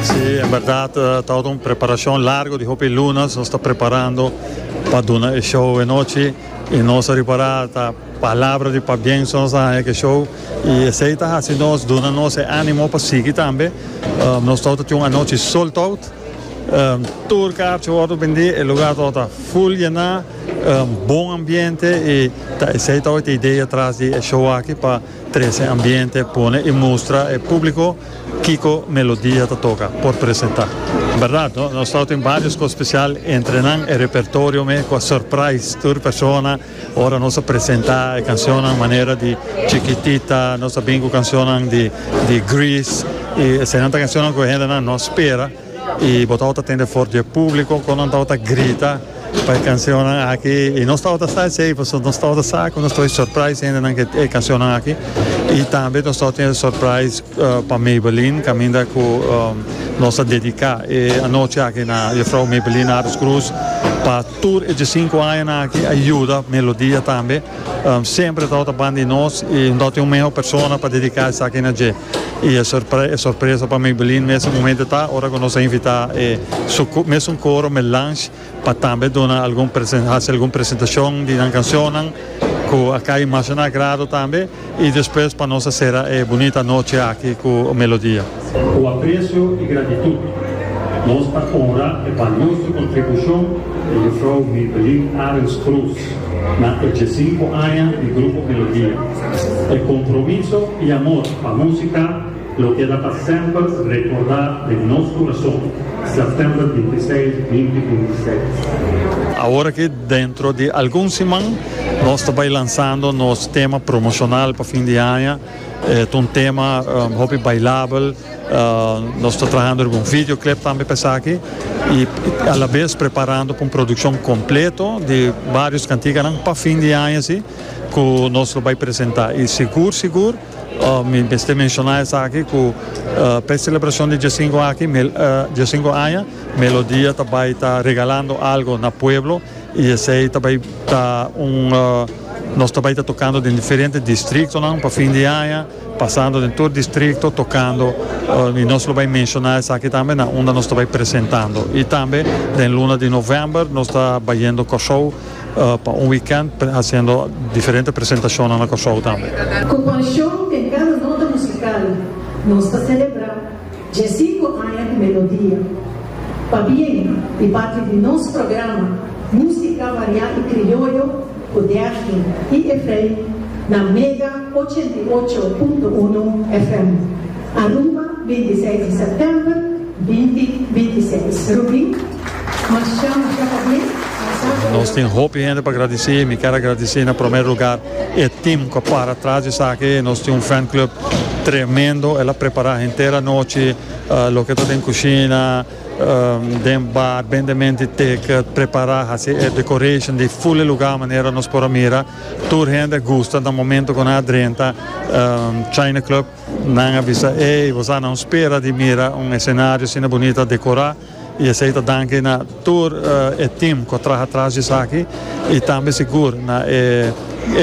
Sí, en berdad eh, ta ora un preparacion largo di hopi lunas. Nos ta preparando pa duna e show e nochi. Y nos a ripara ta palabra di pabienso nos a haña ke show. Y esei ta haci nos, duna nos e animo pa sigui tambe. Um, nos ta ora tin un anochi sold out. Um, tur kaartje wordo bendi, e lugar ta ora full yena, um, bon ambiente y ta esei ta ora te idea tras di e show aki pa Trece ambiente pone y mustra e publico kico melodia ta toca por presenta. Berdad no? Nos tau tin varios cos special entre nan e repertorio me cu a surprise tur persona ora nos a presenta e cancionnan manera di Chiquitita, nos a bin cu cancionnan di Grease y esey nan ta cancionnan cu e hendenan no a spera. Y bo tabata tende for di e publico con nan tabata grita pa e cancionnan aki. Y nos tabata sa esey, pasobra nos tabata sa cu nos tabata surprise hendenan cu e cancionnan aki. Y tambe nos tabata tene surprise pa Maybelline, caminda cu nos a dedica e anochi aki na Juffrouw Maybelline Aris Croes, pa tur e diecinco añanan aki a yuda Melodia tambe. Semper e tabata ban di nos y no tabata tin un meho persona pa dedica esaki na dje. Y e sorpresa pa Maybelline mester momento ta ora cu nos a invita e su mesun coro Melange pa tambe duna algun haci algun presentacion di nan cancionnan cu a cay mas na agrado tambe y despues pa nos a cera e bunita noche aki cu Melodia. Cu aprecio y gratitud nos ta honra e balioso contribucion di Mevrouw Maybelline Arends Kroes na e djiesinco aña di Grupo Melodia. E compromiso y amor pa musica lo keda pa semper recorda den nos corazon, September binti seis, binti binti seis. Awor aki dentro di algun siman nos ta bay lansando nos tema promocional pa fin di aña, e ta un tema hopi bailabel, nos ta trahando riba un video clip tambe pa esaki y a la vez preparando pa un produccion completo di varios cantiganan pa fin di aña si. ku nos lo bai presentá. I sigur sigur, mi mester menshoná esaki ku pa e selebrashon di djasinku aki, djasinku aña, Melodia ta bai ta regalando algu na pueblo i esei ta bai ta un, nos ta bai ta tokando den diferente distriktonan pa fin di aña, pasando den tur distrikto tokando i nos lo bai menshoná esaki tambe na unda nos ta bai presentando. I tambe den luna di novèmber nos ta bayendo Kòrsou. Pa un weekend haciendo diferente presentacionnan na Corsou tambe. Cu pasion den cada nota musical nos ta celebra dje cinco aña di Melodia. Pa bien y parti di nos programa Musica Variá y Crioyo cu Dergin y Efrain na Mega ochenta i ocho punto uno FM, Aruba, binti seis di September, binti binti seis. Rubin. Nos tin hopi hende pa gradisé. Mi ker a gradisé na promé lugar e tim ku a para atras di esaki. Nos tin un fan club tremendo. El a prepará henter anochi loke ta den kushina, den bar, bende menti ticket, prepará, hasi e decoration di full e lugar manera nos por a mira. Tur hende a gusta na momento ku nan a drenta China Club. Nan a bisa, Ey, boso a nan spera di mira un escenario asina bunita decorá. Y esey ta danki na tur e team cu a traha tras di esaki y tambe sigur na e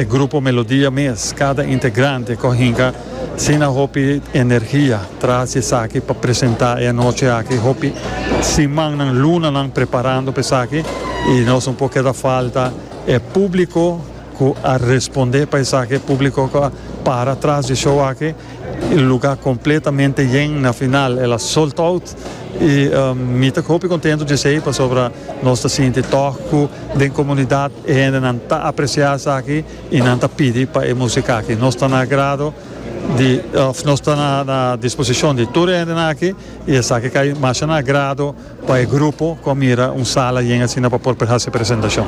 grupo Melodia mes. Cada integrante cu a hinca asina hopi energia tras di esaki pa presenta e anochi aki. Hopi simannan, lunanan preparando pa esaki y nos un po keda falta e publico cu a responde pa esaki, e publico cu a para tras di e show aki. E luga completamente yen na final el a sold out y mi ta hopi contento di esey pasobra nos ta sinti tog cu den comunidad e hendenan ta aprecia esaki y nan ta pidi pa e musica aki. Nos ta na agrado di of nos ta na disposicion di tur e hendenan aki y esaki ta cay masha na agrado pa e grupo cu a mira un sala yen asina pa por haci e presentacion.